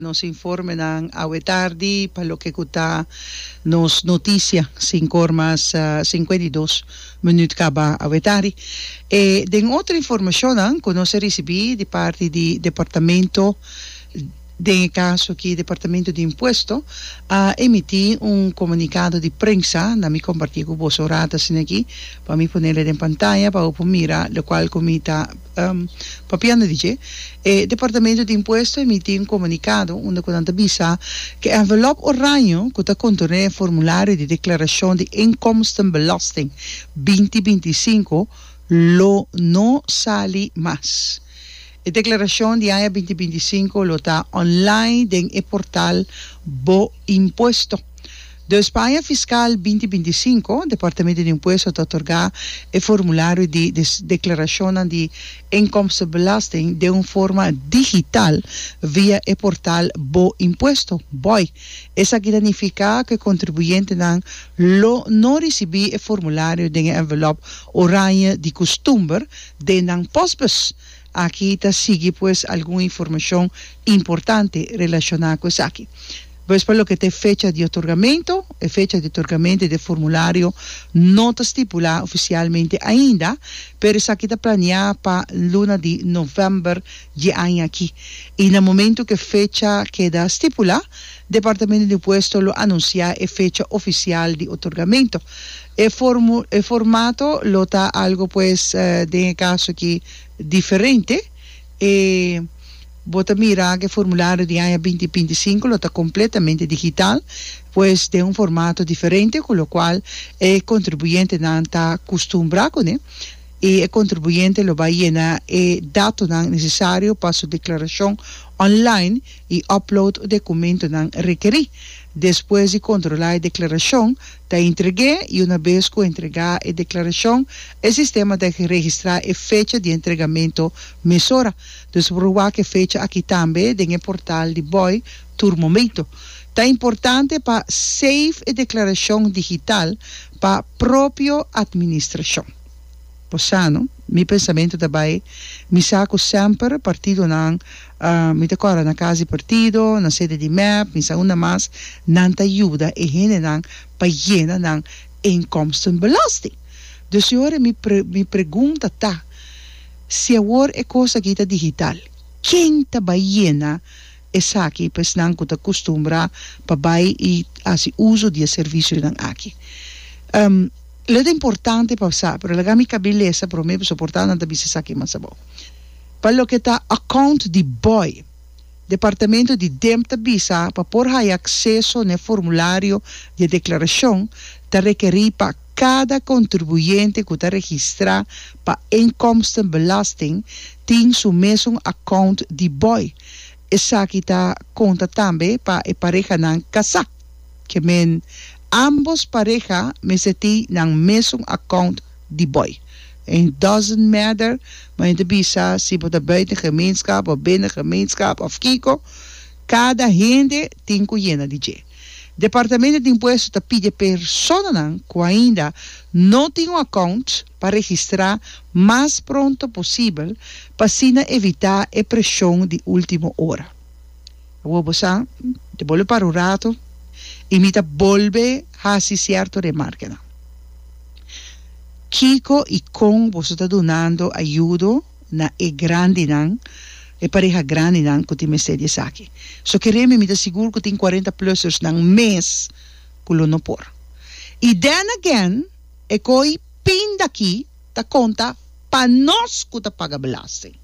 Nos informenan awe tardi pa loke ku ta nos notisia sinku or mas sinkuenta i dos minüt kaba awe tardi. E den otro informashonnan ku nos a risibí di parti di departamento, den e kaso aki departamento di impuesto, a emití un komunikado di prensa, na mi kompartí ku boso ora ta asina aki, pa mi ponel e den pantaya pa bo por mira lokual ku mi ta Papiando di dje, e Departamento di Impuesto emití un komunikado unda ku nan ta bisa ku e envelop oraño ku ta kontorné e formulario di deklarashon di Inkomstenbelasting binti binti i sinku lo no sali mas. E deklarashon di aña binti binti i sinku lo ta online den e portal Bo Impuesto. Dus paña fiskal binti binti i sinku, Departamento di Impuesto ta otorgá e formulario di deklarashonnan di inkomstenbelasting den un forma digital via e portal Bo Impuesto, boi. Esaki ta nifiká ku e kontribuyentenan lo no risibí e formulario den e envelop orañe di kustumber den nan pòsbus. Aki ta sigui pues algun informashon importante relashoná ku esaki. Pues pa loke ta e fecha di otorgamento, e fecha di otorgamento di e formulario no ta stipulá ofisialmente ainda, pero esaki ta planeá pa luna di novèmber dje aña aki, i na momentu ku e fecha keda stipulá, Departamento di Impuesto lo anunsiá e fecha ofisial di otorgamento. E formu, e formato lo ta algo pues den e kaso aki diferente. E Bo ta mira ku e formulario di aña binti binti i sinku lo ta kompletamente digital, pues den un formato diferente ku lokual e kontribuyentenan ta kustumbrá kuné, i e kontribuyente lo bai yena e datonan nesesario pa su deklarashon online i upload dokumentonan rekerí. Despues di kontrolá e deklarashon, Ta entreg'é i una bes ku entregá e deklarashon, e sistema ta registrá e fecha di entregamentu mesora. Dus por wak e fecha aki tambe den e portal di boi tur momentu. Ta importante pa save e deklarashon digital pa propio atministrashon. Posano mi pensamentu ta bai mi sa ku semper partidonan mi ta kora na kas di partido na sede di mep mi sa unda mas nan ta yuda e hendenan pa yena nan inkomstenbelasting dus si ora mi mi pregunta ta si awor e kos aki ta digital ken ta bai yena Esaki pa esnan ku ta kustumbrá pa bai i hasi uso di e servisionan aki. Lo ta importante pa sa, pero laga mi kab'é lesa promé pasobra por ta nan ta bisa esaki mas abou. Pa loke ta account di bòi, Departamento di Demp ta bisa pa por haya akseso na e formulario di e deklarashon ta rekerí pa kada kontribuyente ku ta registrá pa inkomstenbelasting tin su mesun account di bòi Esaki ta konta tambe pa e parehanan kasá. Ke men, ambos pareha mester tin nan mesun akount di bòi. En doesn't matter ma hende bisa si bo ta buiten gemeenschap of binnen gemeenschap of kiko, kada hende tin ku yena di dje. Departamento di Impuesto ta pide personanan ku ainda no tin un akount, pa registrá mas pronto posibel pa asina evitá e preshon di último ora. Awor bo sa, di bolbe para un ratu i mi ta bolbe hasi sierto remarkanan. Kiko i kon boso ta dunando ayudo na e grandinan, e pareha grandinan ku tin mester di esaki? So ke remi mi ta sigur ku tin cuarenta-plusers nan mes ku lo no por. I then again. E koi pin daki ta konta pa nos ku ta paga belasting.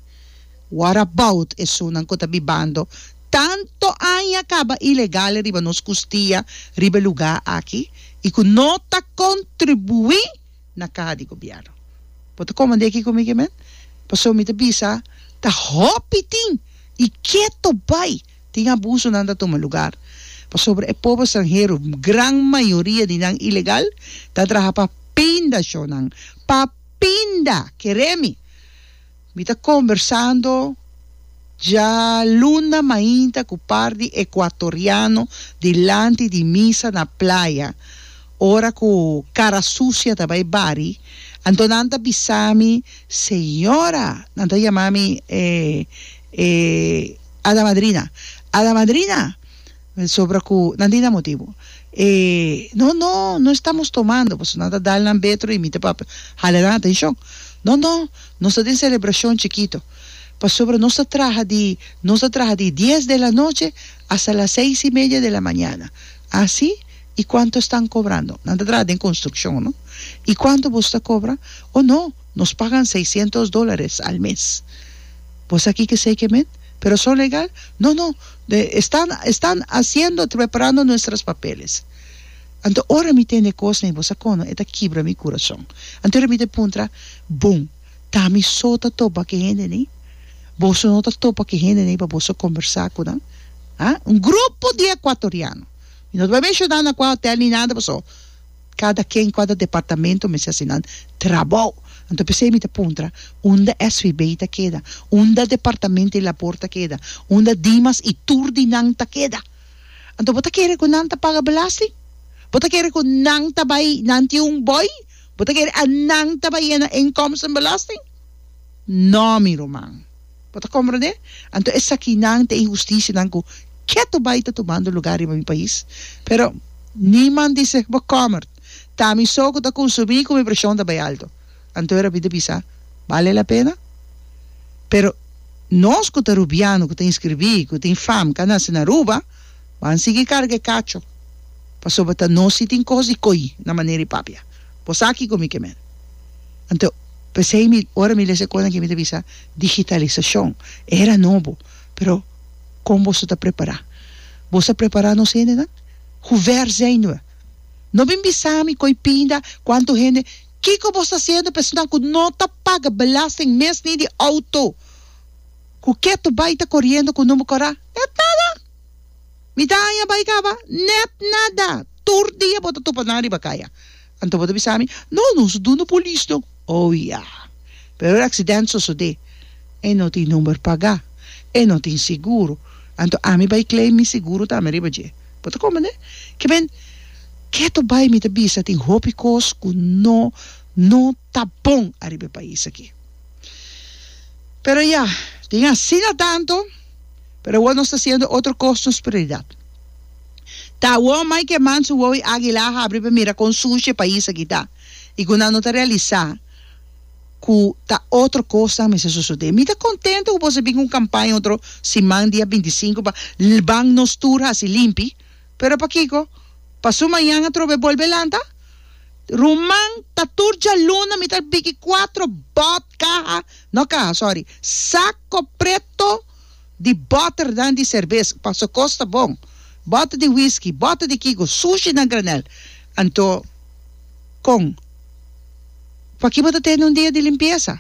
What about esunnan ku ta bibando tantu aña kaba ilegal riba nos kustia riba e lugá aki i ku no ta kontribuí na kaha di gobièrnu? Bo ta komand'é aki ku mi ke men? Pasobra mi ta bisa ta hopi tin i ke to bai. Tin abusonan ta tuma lugar pasobra e pobo stranhero, gran mayoria di nan ilegal, ta traha pa pinda shonnan. Pa pinda! Keré mi! Mi ta kombersando dja luna mainta ku par di ekuatoriano dilanti di misa na playa, ora ku kara susia ta bai bari, anto nan ta bisa mi, Señora! Nan ta yama mi e. Ada madrina, Ada madrina! Mester sobra cu nan tin e motibu. E, No, no, no estamos tomando. Pasobra nan ta dal nan betro y mi ta papia. Hala nan atencion. No, no, nos ta den celebracion chikito. Pasobra nos ta traha di, nos ta traha di dies de la noche hasta las seis y media de la mañana. Ah, si? Y cuanto estan cobrando? Nan ta traha den construccion, no? Y cuanto boso ta cobra? Oh, no! Nos pagan seiscientos dolares al mes. Vos a kike sey ke men? Pero son legal? No, no, de estan, estan hasiendo, preparando nuestras papeles. Anto ora mi tende kos nei, vos a kono, e ta kibra mi kurason. Anto ora mi ta puntra, Bon, ta mi so ta topa ke hende nei? Boso no ta topa ke hende nei pa boso kombersá ku nan? Ha? Un grupo di ekuatoriano. Mi no ta bai menshoná nan kua hotèl ni nada, paso. Cada ken cua ta departamento mester haci nan trabou. Anto p'esey mi ta puntra, unda SVB ta keda? Unda departamento di labor ta keda? Unda Dimas y tur di nan ta keda? Anto bo ta kere cu nan ta paga belasting? Bo ta kere cu nan ta bay, nan tin un boy? Bo ta kere a nan ta bay e na inkomstenbelasting? No mi ruman. Bo ta komprendé? Anto esakinan ta inhustisianan ku ketu bai ta tumando lugá riba mi pais. Pero, niman di seg bo kòmert, ta mi so ku ta konsumí ku mi preshon ta bai alto. Anto e rabí ta bisa, Bale la pena? Pero, nos ku ta rubiano, ku ta inskribí, ku tin fam, ka nase na Aruba, ban sigui karga e kacho, pasobra ta nos si tin kos di koi na manera di papia. Bo sa kiko mi ke men? Anto, pesei mi, ora mi lesa e kosnan ke mi ta bisa, digitalisashon, e era nobo, pero kon boso ta prepará? Boso a prepará nos hendenan? Huver zèn noe? No bin bisa mi koi pinda, kuantu hende, kiko boso ta hasiendo personan ku no ta paga belasting mes ni di outo, ku ke to bai ta koriendo ku number kòrá? Nèt nada! Mitan aña bai kaba, nèt nada! Tur dia bo ta tupa nan riba kaya. Anto bo ta bisa mi, No, nos no duna polis no. Oh ya. Pero e accident sosode. E no tin number paga. E no tin seguro. Anto ami bay claim mi seguro tambe riba dje. Bo ta comprende? Kiben, keto bay mi ta bisa tin hopi cos cu no, no ta bon ariba e pais aki. Pero ya, tin asina tanto, pero awor nos ta haciendo otro cos nos prioridad. Ta wou mai ke man su wou i agila a habri pa mira kon sushi e pais aki ta. I ku nan no ta realisa ku ta otro kosnan mester sosodé. Mi ta kontento ku boso a bin ku un kampaña otro siman dia binti sinku pa ban nos tur hasi limpi. Pero pakiko? Pasú mañana trobe e bolbe lanta? Ruman, ta tur djaluna mi ta biki kuatro bòt, kaha, no kaha, sòri, sako preto. di bòternan di serbes, paso kos ta bon, bòter di whisky, bòter di kiko, sushi na granel. Anto kon pa ki bo ta tende un dia di limpiesa?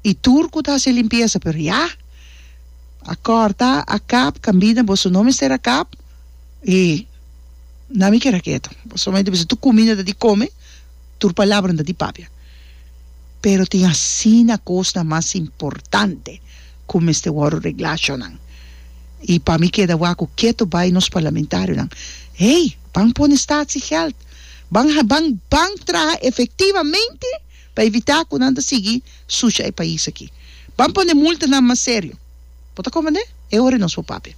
I tur ku ta hasi limpiesa, pero ya a kòrta, a kap, kambida, boso no mester a kap i nan mi keda ketu, boso nomás inter bisa tur kumina ta di kome. Tur palabranan ta di papia, pero tin asina kosnan mas importante ku mester wòrdu reglá, chonan. I pa mi keda waku ketu bai nos parlamentarionan, Hey, ban pone statsiegèld, ban ban ban traha efektivamente pa evitá ku nan ta sigui sucha e pais aki. Ban pone multanan mas serio. Bo ta komende? E ora nos por papia.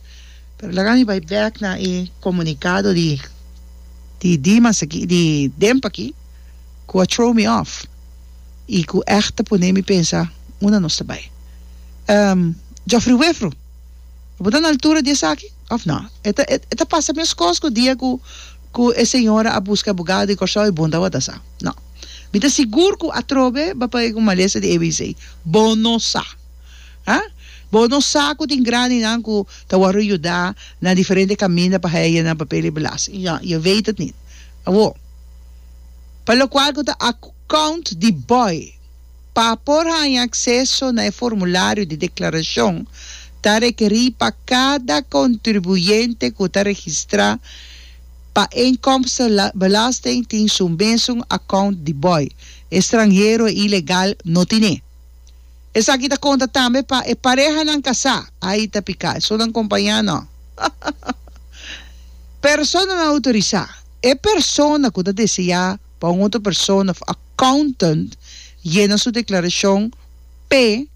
Pero laga mi bai bek na e komunikado di di Dimas aki, di Demp aki, ku a throw mi off i ku ègt a pone mi pensa unda nos ta bai. Ehm, Jofri Wefru, bo ta na altura di esaki òf nò? E ta e ta pasa meskos ku dia ku ku e señora a buska e abogado di Kòrsou, e bon tabata sa. Nò. Mi ta sigur ku atrobe ba pag'é ku malesa di ABC. Bo no sa. Ha? Bo no sa ku tin graninan ku ta wòrdu ayudá na diferente kaminda pa haña nan papel di belasting? Ya, yo wéit et nit. Awó, pa lokual ku ta akount di bòi pa por haña akseso na e formulario di deklarashon ta rekerí pa kada kontribuyente ku ta registrá pa inkomstenbelasting tin su mesun akount di bòi. E stranhero ilegal no tine. Esaki ta conta tambe pa e parehanan casá, ahi ta picá e sunan compañá no. Personanan autorisá, e persona cu ta deseá pa un otro persona of accountant yena su declaracion pe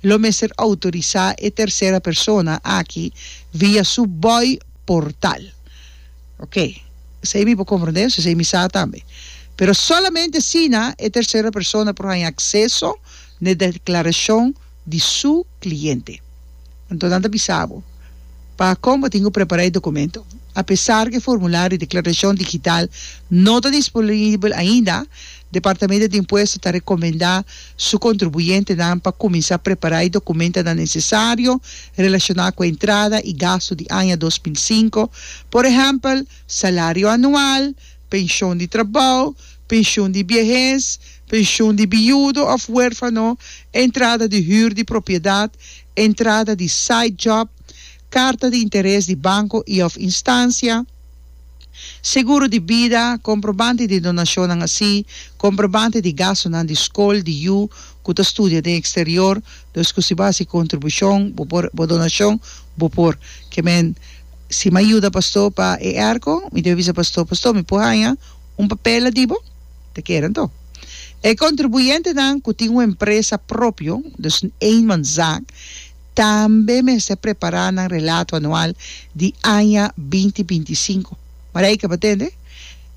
lo mester autorisá e tercera persona aki via su boi portal. Ok, esei mi por komprendé, sesei mi sa tambe. Pero solamente asina e tersero persona por haña akseso na e deklarashon di su kliente. Anto nan ta bisa bo pa kon bo tin ku prepará e dokumento. Apesar ku e formulario di deklarashon digital no ta disponibel ainda, Departamento di Impuesto ta recomenda su contribuyentenan pa cuminsa prepara e documentanan necesario relaciona cu e entrada y gasto di aña dos mil sinku, por ehempel, salario anual, pension di trabou, pensioen di biehes, pensioen di biudo of huerfano, entrada di huur di propiedad, entrada di side job, carta di interes di banco y of instancia. Seguro di bida, komprobante di donashonnan así, komprobante di gastunan di skol di yu ku ta studia den eksterior, los ku si bo hasi kontribushon, bo por, bo donashon, bo por. Ke men, si mi a yuda Pastó pa e èrko, mi debe bisa Pastó, Pastó, mi por haña un papel na dibo? Ta kere anto. E kontribuyentenan ku tin un empresa propio, dus eenmanszaak, Tambe mester prepará nan relato anual di aña binti binti sinku. Mara ei tabata ende?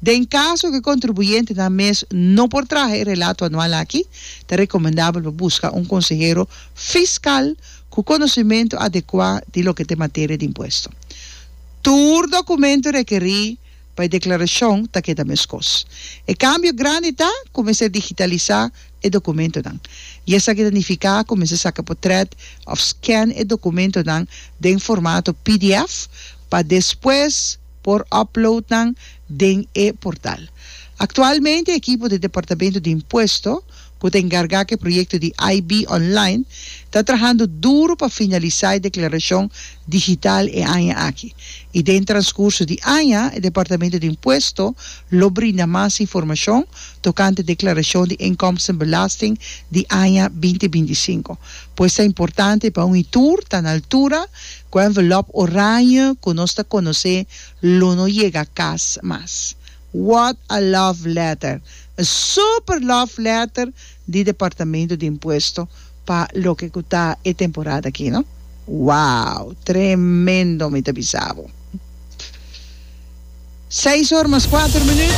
Den kaso ku e kontribuyentenan mes no por traha e relato anual aki, ta rekomendabel pa buska un konsehero fiskal ku konosementu adekuá di loke ta e materia di impuesto. Tur dokumentu rekerí pa e deklarashon ta keda meskos. E kambio grandi ta ku mester digitalisá e dokumentonan i esaki ta nifiká ku mester saka potrèt òf scan e dokumentonan den formato pdf pa despues por upload nan den e portal. Aktualmente e ekipo di Departamento di Impuesto ku ta enkargá ku e proyekto di IB Online ta trahando duru pa finalisá e deklarashon digital e aña aki i den transcurso di aña e Departamento di Impuesto lo brinda mas informacion tocante declaracion di inkomstenbelasting di aña binti binti sinku. Pues ta importante pa un i tur ta na altura cu e envelop orañe cu nos ta conoce lo no yega cas mas. What a love letter! E super love letter di Departamento di Impuesto pa loke cu ta e temporada aki no wow tremendo mi ta bisa bo seis or mas cuater minuut.